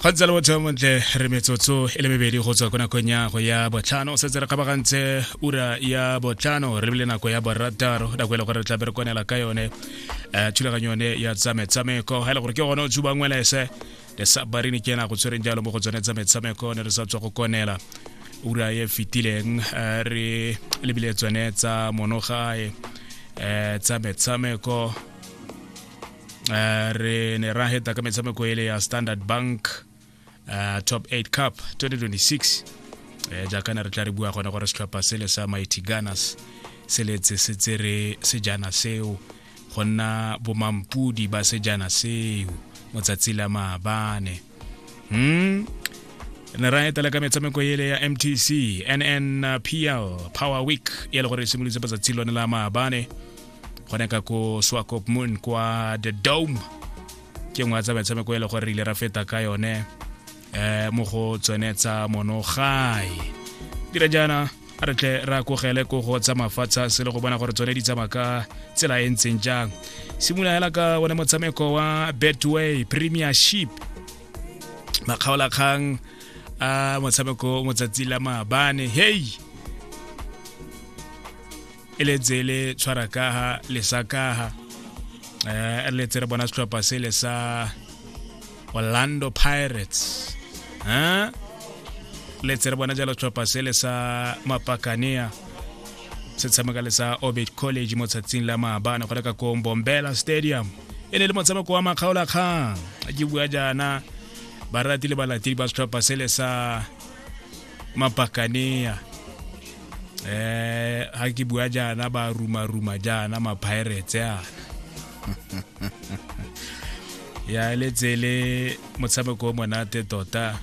kgotsa le botho montle re metsotso e le mebedi go tswa ko nakong ya go ya botlhano o setse re kgabagantse ura ya botlhano re bile nako ya borataro nako e le gore re tla berekonela ka yone um thulaganyo yone ya tsa metshameko ga e le gore ke gone o tsuba ngwelese le sa barini ke ena go tshwereng jalo mo go tsone tsa metshameko ne re sa tswa go konela ura e fetileng eh, re lebile tsone tsa monogae um eh, tsa metshameko uh, re ne ra heta ka metshameko ele ya standard bank uh, top 8 cup 2026 uh, eh, jaaka ne re tla re bua gone gore setlhopha sele sa mighty gunners se letse se tsere sejana seo go nna bomampudi ba sejana seo motsatsi la maabane hmm ne ra etela ka metshameko ele ya mtc nnpl power week e le gore e simolotse batsatsi lone la maabane gone ka ko swakop moon kwa the dome ke nngwe tsa metshameko e le gore re ile ra feta ka yone um mo go tsone tsa monogai dira jaana a re tle ra kogele ko go tsa mafatsha se le go bona gore tsone di tsamaya ka tsela e ntseng jang simolola hela ka one motshameko wa betway premiership makgaolakgang a motshameko motsatsi la maabane hei e le tsele tshwara kaha le sa kaha eh re letse re bona setlhopha se le sa Orlando Pirates eh letse re bona jalo setlhopha se le sa Mapakanea se tshameka le sa Orbit College mo tsatsing la maabane go reka ko Bombela Stadium e ne le motshameko wa makgaolakgang ke bua jaana baratile balatedi ba setlhopha se le sa mapakanea eh ha ke bua jaana ba ruma ruma jaana ma pirates yana ya letsele motshameko o monate tota